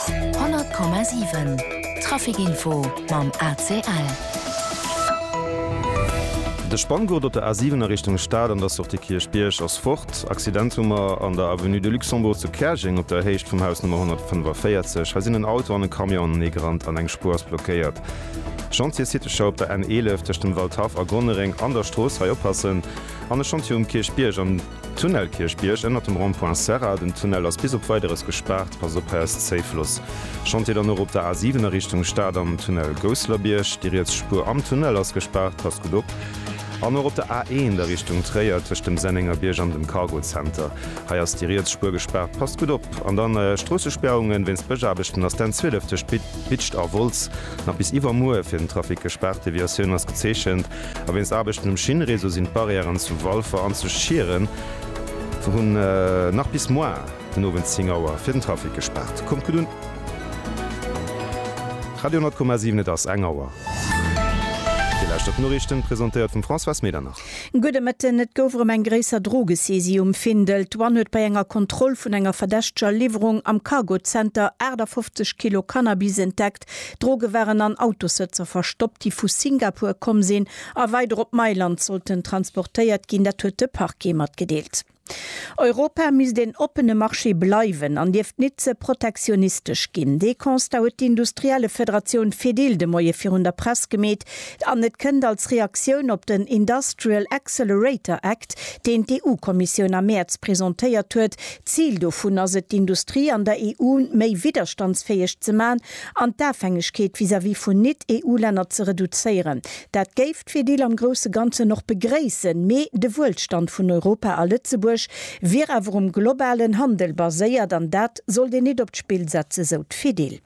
100,7 Trafic Info mam ACL. De Spanngurt op der A7 a Richtung Stad an der Sortie Kierchbierg ass fort. Accident hu mer an der Avenue de Luxembourg zu Käerjeng op der Héicht vum Haus Nummer 145. Hei sinn en Auto an e Camion anenee gerannt an eng Spuer ass blockéiert. Chantier Citeschau op der N11 tëscht dem Waldhaff a Gonnereng an der Strooss, hei oppassen. An e Chantier um Kierchbierg an. Tunnel Kierchbierg ënner dem Rond-point Serra, den Tunnel ass bis op Weideres gespaart, pass op, hei ass d'Safe Loss. Chantier dann och op der A7 a Richtung Stad am Tunnel Gousselerbierg, déi riets Spuer am Tunnel ass gespaart, passt gutt op. An och op der A1 a Richtung Tréier tëscht dem Sennengerbierg an dem Cargo Center, hei ass déi riets Spuer gespaart, passt gutt op. An dann Stroossespäerungen wéinst Bëschaarbechten ass d'N12 tëscht Bitscht a Wolz nach bis iwwermuer fir den Trafic gespaart, Deviatioun ass gezeechent. A wéinst Aarbechten um Schinnréseau sinn d'Barrièren zu Walfer an zu Schieren vun nach bis moar den Owend 10 Auer fir den Trafic gespaart. Kommt gutt un! Radio 10,7 Et ass eng Auer. Dir lauschtert d'Noriichten, presentéiert vum Françoise Medernach. Gudde Mëtten. Et gouf erëm eng gréisser Drogesaisie um Findel. D'Douane huet bei enger Kontroll vun enger verdächteger Liwwerung am Cargozenter 58 Kilo Cannabis entdeckt. Droge waren an Autossëtzer verstoppt, déi vu Singapur komm sinn a weider op Mailand sollten transportéiert ginn. Dat huet de Parquet matgedeelt. Europa misst een oppene Marché bleiwen an dierft nit ze protektionistesch ginn. Dee Constat huet d'Industriellefederatioun Fedil de Moie virun der Press gemeet an et kënnt als Reaktioun op den Industrial Accelerator Act, deen d'EU-Kommissioun am Mäerz presentéiert huet, D'Zil dovun ass et, d'Industrie an der EU méi widderstandsfäeg ze maachen an d'Afhängegkeet vis-à-vis vun Nit-EU-Länner ze reduzéieren. Dat géif d'Fedil am grousse Ganzen och begréissen, mee de Wuelstand vun Europa a Lëtzebuerg wier awer um globalen Handel baséiert an dat sollt een nit op d'Spill setzen, sou d'Fedil.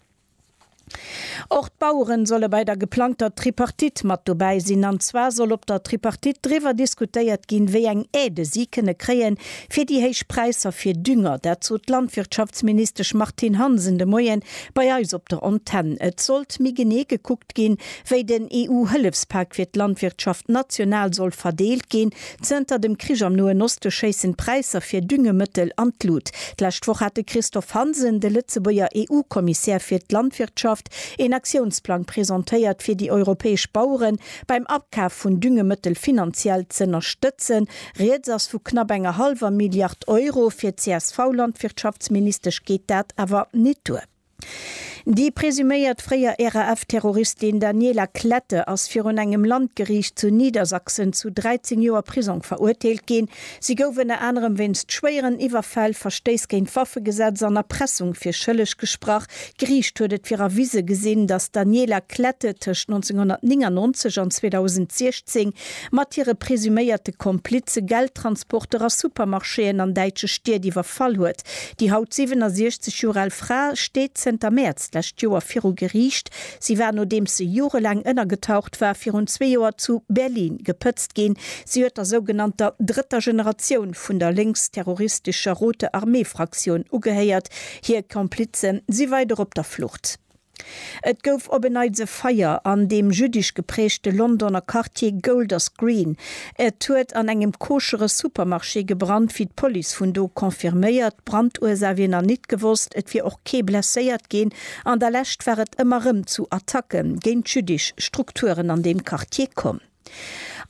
Och d'Baueren solle bei der geplangter Tripartite mat dobäi sinn. An zwar soll op der Tripartite driwwer diskutéiert ginn, wéi eng Aide si kënne kréien, fir déi héich Präisser fir Dünger. Dat sot d'Landwirtschaftsministesch Martine Hansen de Moien bei eis op der Antenn. Et sollt méi genee gekuckt ginn, wéi den EU-Hëllefspak fir d'Landwirtschaft national soll verdeelt ginn, Zënter dem Krich am Noen Oste schéissen d'Präisser fir Düngemëttel an d'Lut. D'lescht Woch hat de Christophe Hansen, de Lëtzebuerger EU-Kommissär fir d'Landwirtschaft, een Aktiounsplang presentéiert, fir déi europäesch Bauere beim Akaf vun Düngemëttel finanziell z'ënnerstëtzen. Rieds ass vu knapp enger hallwer Milliard Euro. Fir d'CSV-Landwirtschaftsministesch geet dat awer net duer. Déi presuméiert fréier RAF-Terroristin Daniela Klette ass virun engem Landgeriicht zu Niedersachsen zu 13 Joer Prisong verurteelt ginn. Si gouf ënner anerem wéinst schwéieren Iwwerfäll, Verstéiss géint d'Waffegesetz an Erpressung fir schëlleg gesprach. D'Geriicht huet et fir erwise gesinn, datt d'Daniela Klette tëscht 1999 an 2016 mat hire presuméierte Komplize Geldtransporter a Supermarchéen an däitsche Stied iwwerfall huet. Déi haut 67 Joer al Fra steet zënter Mäerz d'lescht Joer viru Geriicht. Si war, nodeems se jorelaang ënnergetaucht war, virun zwee Joer zu Berlin gepëtzt ginn. Si huet der sougenannter drëtter Generatioun vun der lénksterroristescher Rote Armee-Fraktioun ugehéiert. Hir Komplize si weider op der Flucht. Et gouf op en Neits e Feier an deem jüddisch geprägte Londoner Quartier Golders Green. Et huet an engem koschere Supermarché gebrannt, wéi d'Police vun do confirméiert. D'Brandursaach wier nach nit gewosst. Et wier och kee blesséiert ginn. An der Lescht war et ëmmer rëm zu Attacke géint jüddisch Strukturen an deem Quartier komm.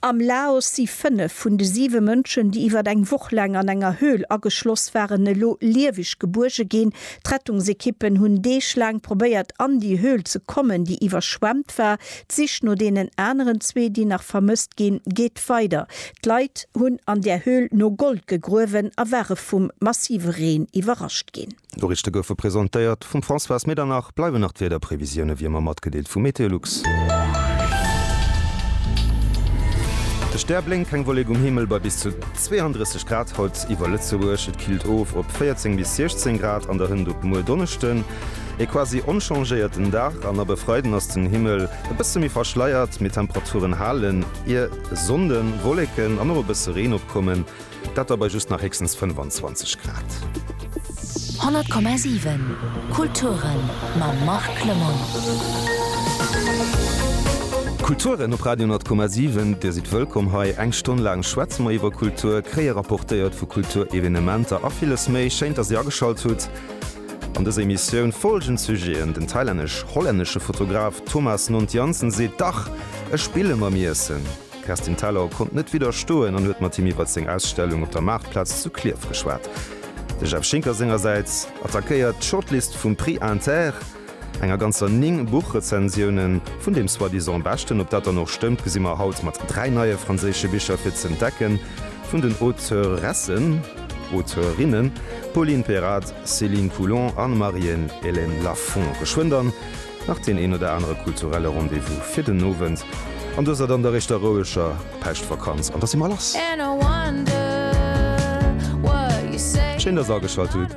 Am Laos si fënnef vun de siwe Mënschen, déi iwwer eng Woch laang an enger Höhl ageschloss waren, elo lieweg gebuerge ginn. D'Rettungsekippen hunn Deeg laang probéiert, an déi Höhl ze kommen, déi iwwerschwemmt war. D'Sich no deenen aneren zwee, déi nach vermësst ginn, geet weider. D'Leit hunn an där Höhl no Gold gegruewen a ware vum massive Reen iwwerrascht ginn. D'Noriichte goufe presentéiert vum Françoise Medernach. Bleiwen nach d'Wiederprevisiounen, wéi ëmmer matgedeelt, vu Meteolux. De Stär blénkt, keng Wollek um Himmel, bei bis zu 32 Grad haut iwwer Lëtzebuerg. Et killt of op 14 bis 16 Grad an der Hënt. Op muer Donneschden e quasi onchangéierten Dag an ab e Freiden ass den Himmel e bësse méi verschleiert, mee d'Temperaturen halen ier. Sonnde Wolleken an och e bësse Reen opkommen. Dat da bei just nach héchstens 25 Grad. 100,7 Kulturen mam Marc Clement. Kulturen op Radio 10,7, Dir sidd wëllkomm hei. Eng Stonn laang schwätze mer iwwer Kultur, kréie rapportéiert vu Kulturevenementer a villes méi. Schéin, dass Dir ageschalt hutt. An dëser Emissioun folgend Sujeten, Den thailännesch-hollännesche Fotograf Thomas Nont Jansen seet, Dach, ech spille mam Iessen. D'Kerstin Thalau konnt net widderstoen an huet mat him iwwert seng Ausstellung op der Maartplaz zu Klierf geschwat. De Jeff Schinker sengersäits attackéiert d'Shortlist vum Prix Inter, enger ganzer 9 Buchrezensiounen. Vun deem soi-disant Beschten, ob dat dann och stëmmt, gesi mer haut mat 3 neie franséische Bicher fir z'entdecke vun den Auteuressen, Auteurinnen, Pauline Perrade, Céline Coulon a Marienne-Hélène Lafon. Geschwënn dann! nach deen een oder anere kulturelle Rendez-vous fir den Owend, an du ass et an der éischter roueger Päischtvakanz, an da si mer lass! Schéin, dass Dir ageschalt hutt!